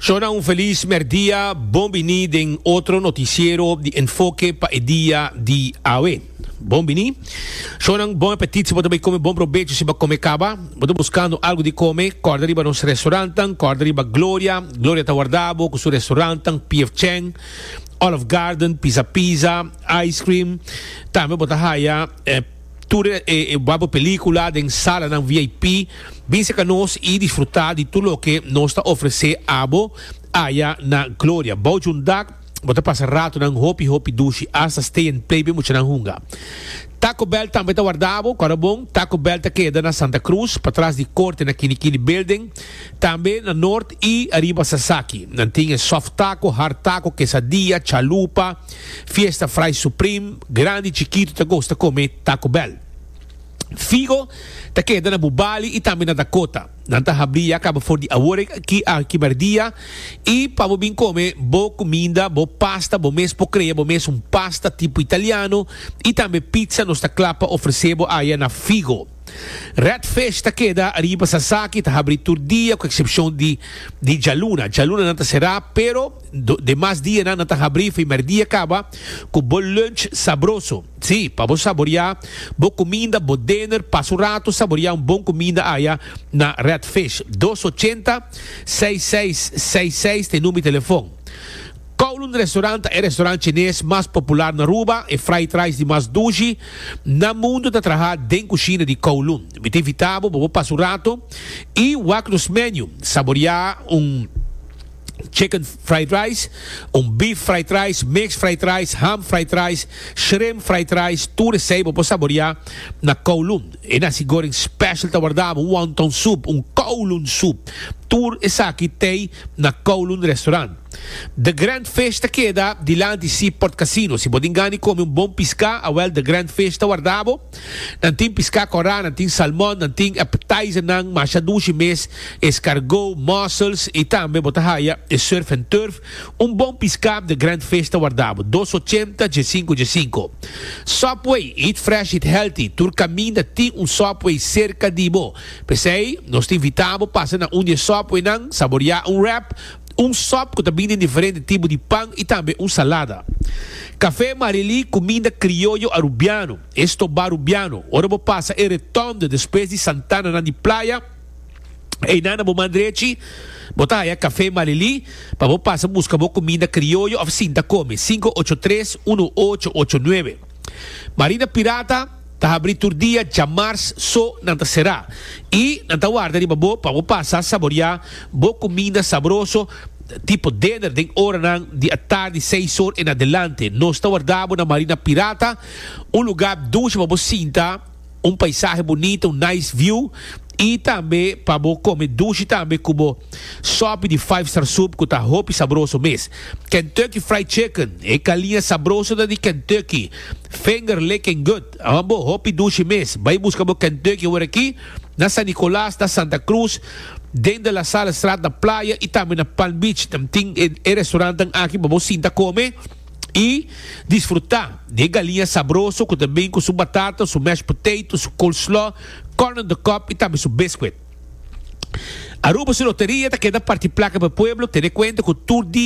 Shona un felis merdia, bon bini den otro noticiero di Enfoke pa e dia di awe. Bon bini. Shonan bon apetit si bo ta bay come bon probecho si bo a come caba. Bo ta buscando algo di come, corda riba nos restaurantnan, corda riba Gloria, Gloria ta warda bo cu su restaurantnan, PF Chang, Olive Garden, Pizza Pizza, Ice Cream, tambe bo ta haya, eh, Tur e wak pelicula den salanan VIP. Bin seca nos y disfruta di tur loke nos ta ofrece abo aya na Gloria. Bao jundak, bo ta pasa ratonan hopi hopi dushi hasta stay and play bin muchanan hunga. Taco Bell tambe ta warda bo. Cora bon, Taco Bell ta keda na Santa Cruz, patras di Corte na Kini Kini Building. Tambe na Noord y ariba Sasaki. Nan tin e soft taco, hard taco, quesadilla, chalupa. Fiesta Fry Supreme, grandi y chikitu ta gosta come Taco Bell. Figo ta keda na Bubali y tambe na Dakota. Nan ta habri ya caba for di aworek aki a kimer dia y pa bo bin come bo cuminda, bo pasta, bo mes por crea bo mes un pasta tipo italiano y tambe pizza nos ta cla pa ofrece bo aya na Figo. Redfish ta keda riba Sasaki, ta habri tur dia ku eksepshon di di djaluna. Djalunanan ta será, pero do demas dianan nan ta habri primer dia kaba ku bo lunch sabroso. Sí, pa bo saboriá bo kuminda, bo dinner, pasa un ratu saboriá un bon kuminda aya na Redfish. Dos ochenta, seis seis seis seis ta e number di telefon. Kowloon Restaurant ta e restaurant Chines mas popular na Aruba, e fried rice di mas dushi na mundu ta traha den kushina di Kowloon. Mi ta invita bo pa bo pasa un rato i wak nos menu, saborea un chicken fried rice, un beef fried rice, mixed fried rice, ham fried rice, shrimp fried rice, tur esei bo por saborea na Kowloon. E nasi goreng special ta wardabo, un wonton soup, un Kowloon soup, tur esaki tei na Kowloon Restaurant. The Grand Fish ta keda dilanti Seaport Casino. Si bo tin gana di kome un bon piská, awèl The Grand Fish ta warda bo. Nan tin piská kòrá, nan tin salmòn, nan tin appetizernan masha dushi mes, escargot, mussels, i tambe bo ta haya e surf and turf. Un bon piská The Grand Fish ta warda bo. Dos ochenta dje sinku dje sinku. Subway, eat fresh, eat healthy. Tur kaminda tin un Subway serka di bo. P'esei nos ta invitá bo pasa na un di e Subwaynan, saboriá un wrap, un sòp ku ta bini den diferente tipo di pan i tambe un salada. Kafé Marily kuminda krioyo arubiano, e stobá arubiano. Ora bo pasa e Retònde despues di Santananan di Playa, einan na bo man drechi bo ta haya Kafé Marily pa bo pasa buska bo kuminda krioyo òf sinta kome, sinku ocho tres uno ocho ocho nuebe. Marina Pirata ta habri tur dia dja mars so nan ta será y nan ta warda riba bo pa bo pasa saboria bo cuminda sabroso tipo dinner den oranan di atardi seis or en adelante. Nos ta warda bo na Marina Pirata, un lugar dunchi pa bo sinta. Un paisahe bunita, un nice view y tambe pa bo come dushi tambe cu bo sopi di Five Star Soup cu ta hopi sabroso mes. Kentucky Fried Chicken, e calia sabroso ta di Kentucky, finger licking good. Awan bo hopi dushi mes, bay busca bo Kentucky awor aki na San Nicolas, na Santa Cruz, den De La Salle Straat na Playa y tambe na Palm Beach. Nan tin e restaurantan aki pa bo sinta come. i disfrutá di e galiña sabroso ku ta bin ku su batata, su mashed potato, su coleslaw, corn on the cob i tambe su biscuit. Aruba su loteria ta keda parti plaka pa e pueblo tene kuenta ku tur dia.